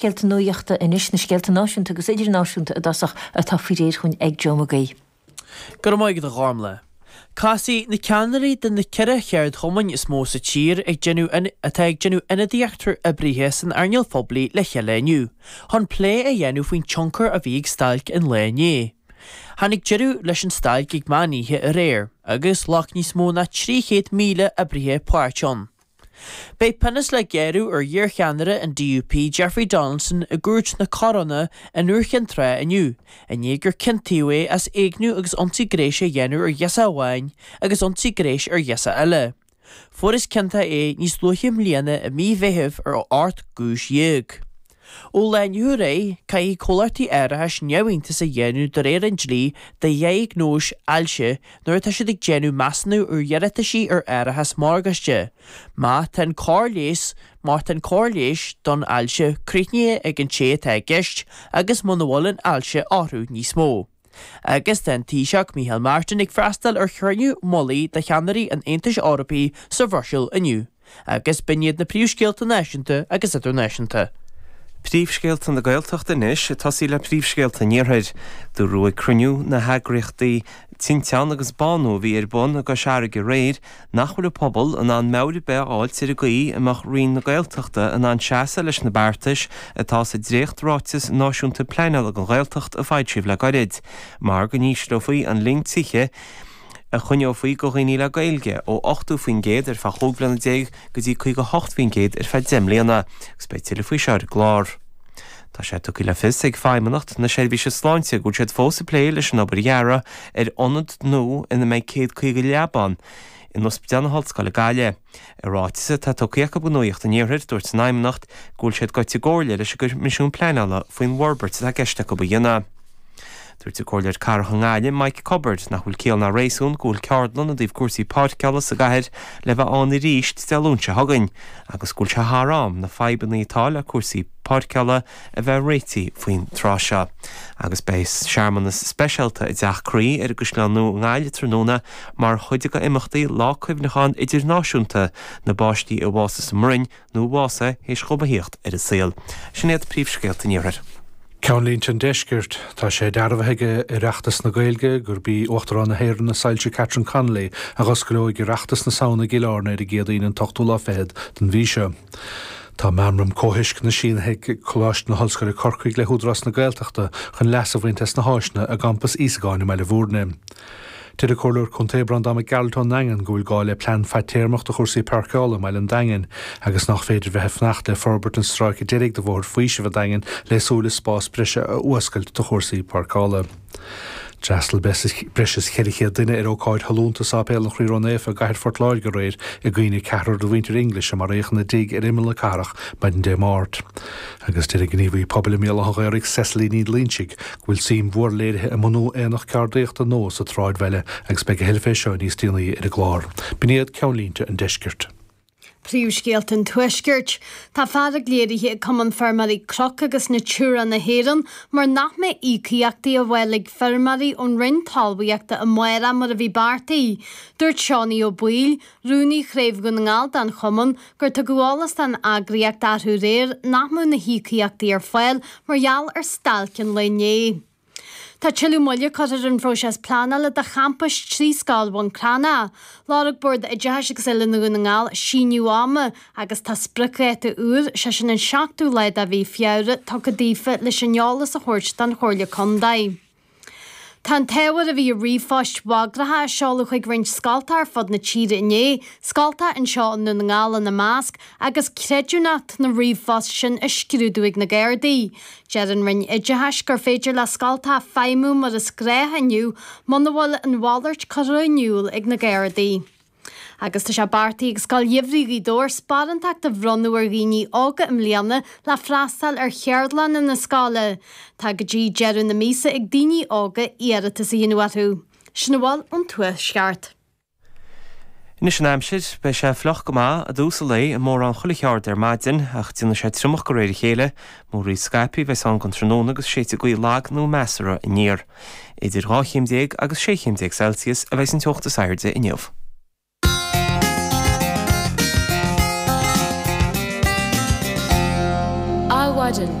scéalta nuachta anois, na scéalta náisiúnta agus idirnáisiúnta i dtosach, atá faoi réir chugainn ag Joe McGuigh. Go raibh maith agat a Ghormlaith. Casfaidh na ceannairí de na ceithre cheardchumainn is mó sa tír atá ag déanamh ionadaíocht ar oibrithe san earnáil phoiblí le chéile inniu chun plé a dhéanamh faoin tionchar a bhí ag stailc an lae inné. Tháinig deireadh leis an stailc ag meán oíche aréir agus ghlac níos mó ná 300,000 oibrithe páirt ann. Beidh pionós le gearradh ar iarcheannaire an DUP Jeffrey Donaldson i gCúirt na Coróine in Iúr Cinn Trá inniu i ndiaidh gur ciontaíodh é as éigniú agus ionsaí gnéis a dhéanamh ar ghirseach amháin agus ionsaí gnéis ar ghirseach eile. Fuarthas ciontach é níos luaithe i mbliana i mí Mheithimh ar ocht gcúis dhéag. Ón lá arú inné, caithfidh comhlachtaí árachais neamhiontas a dhéanamh de réir an dlí de dhiagnóis ailse nuair atá siad ag déanamh measúnú ar iarrataisí ar árachas morgáiste. Má tá an cóir leighis, má tá an cóir leighis don ailse críochnaithe ag an té atá i gceist agus muna bhfuil an ailse orthu níos mó, Agus tá an Taoiseach Micheál Martin ag freastal ar chruinniú mullaigh de cheannairí an Aontais Eorpaigh sa Bhruiséil inniu agus b'in iad na príomhscéalta náisiúnta agus idirnáisiúnta. Príomhscéalta na Gaeltachta anois, ag tosaí le príomhscéalta an iarthair. Dúradh ag cruinniú na heagraíochtaí Tinteán agus Bánú a bhí ar bun i gCois Fharraige aréir, nach bhfuil an pobal in ann meabhair ar bith a fháilt ar an gcaoi a mbeadh Roinn na Gaeltachta in ann seasamh leis na beartais atá sa dréacht-ráiteas náisiúnta pleanála don Ghaeltacht a foilsíodh le gairid, mar go n-ísleofaí an líon tithe a choinneofaí do dhaoine le Gaeilge ó 80% ar feadh 15 bliana go dtí 58% ar feadh 10 mbliana, agus beidh tuilleadh faoi seo ar an gclár. Tá sé tugtha le fios ag Feidhmeannacht na Seirbhíse Sláinte go bhfuil siad fós ag plé leis an obair dheartha ar ionad nua ina mbeidh 150 leaba ann in Ospidéal na hOllscoile Gaillimh. I ráiteas atá tugtha acu do nuacht an Iarthair, dúirt an Fheidhmeannacht go bhfuil siad gaibhte i gcomhairle leis an gCoimisiún Pleanála faoin bhforbairt atá i gceist acu a dhéanamh. Dúirt an Comhairleoir Cathrach i nGaillimh Mike Cubbard nach bhfuil ciall ná réasún go bhfuil ceardlann i dtaobh cúrsaí páirceála sa gcathair le bheith ann arís Dé Luain seo chugainn agus go bhfuil sé thar am na fadhbanna atá le cúrsaí páirceála a bheith réití faoin tráth seo agus beidh searmanas speisialta i dTeach Croí ar an gCaisleán Nua i nGaillimh tráthnóna mar chuid d'imeachtaí Lá Cuimhneacháin Idirnáisiúnta na bPáistí a Bhásaigh sa mBroinn nó a bhásaigh théis dóibh a thíocht ar an saol. Sin iad príomhscéalta an Iarthair. Ceannlínte an Deiscirt, Tá sé dearbhaithe ag Oireachtas na Gaeilge gurb í Uachtarán na hÉireann a Soilse Catherine Connolly a dh'osclóidh Oireachtas na Samhna i gCill Airne ar an gCéadaoin an t-ochtú lá fichead den mhí seo. Tá Meamram Comhthuisceana sínithe ag Coláiste na hOllscoile Corcaigh le hÚdarás na Gaeltachta chun leas a bhaint as na háiseanna i gCampas Íosagáin i mBaile Bhúirne. Deir an Comhairleoir Contae Breandán Mac Gearailt ón Daingean go bhfuil gá le plean fadtéarmach do chúrsaí páirceála i mBaile an Daingin agus nach féidir bheith ag fanacht le forbairt an stráice deiridh de Bhóthar Faoisimh an Daingin le súil le spás breise a fhuascailt do chúrsaí páirceála. D'fhreastal breis is 400 duine ar ócáid shollúnta i Séipéal an Chroí Ró Naofa i gCathair Phort Láirge aréir i gcuimhne ceathrar de mhuintir English a maraíodh ina dtigh ar imeall na cathrach maidin Dé Máirt. agus deir an gníomhaí pobail i mBéal Átha an Ghaorthaidh Cecily Ní Loinsigh go bhfuil suim mhór léirithe i mbunú aonach ceardaíochta nua sa tsráidbhaile agus beidh a thuilleadh fé seo níos déanaí ar an gclár. B'in iad ceannlínte an Deiscirt. Príomhscéalta an Tuaiscirt. Tá fearg léirithe ag Cumann Feirmeoirí Cnoc agus Natura na hÉireann mar nach mbeidh íocaíochtaí ar fáil ag feirmeoirí ón Roinn Talmhaíochta amárach mar a bhí beartaithe. Dúirt Seánie Ó Baoill, Rúnaí Chraobh Dhún na nGall den Chumann, gur tugadh eolas don eagraíocht arú aréir nach mbeadh na híocaíochtaí ar fáil mar gheall ar stailc an lae inné. Tá tuilleadh moille curtha ar an phróiseas pleanála do champas trí scoil Bhun Cranncha. Lorg Bord Oideachais agus Oiliúna Dhún na nGall síneadh ama agus tá spriocdháta úr, sé sin an 7ú lá de mhí Feabhra, tugtha daofa leis an eolas a thabhairt don Chomhairle Contae. Tá an t-ábhar a bhí i ríomhphoist bhagracha a seoladh chuig roinnt scoltacha ar fud na tíre inné, scoltacha anseo i nDún na nGall ina measc, agus creidiúnacht na ríomhphost sin á scrúdú ag na Gardaí. Deir an Roinn Oideachais gur féidir le scoltacha feidhmiú mar is gnách inniu muna bhfuil an mhalairt curtha in iúl ag na Gardaí. agus tá sé beartaithe ag Scoil Gheimhridh Ghaoth Dobhair sparántachtaí a bhronnadh ar dhaoine óga i mbliana le freastal ar cheardlanna na scoile. Tá go dtí deireadh na míosa ag daoine óga iarratas a dhéanamh orthu. Sin a bhfuil ón Tuaisceart. Anois an aimsir. Beidh sé fliuch go maith i dtús an lae i mórán chuile cheard ar maidin ach déanfaidh sé triomach de réir a chéile. Múraíl scaipthe a bheas ann don tráthnóna agus séidfidh gaoth lag nó measartha aniar. Idir dhá chéim déag agus sé chéim déag Celsius a bheidh an teocht is airde inniu. Adhmhaidin.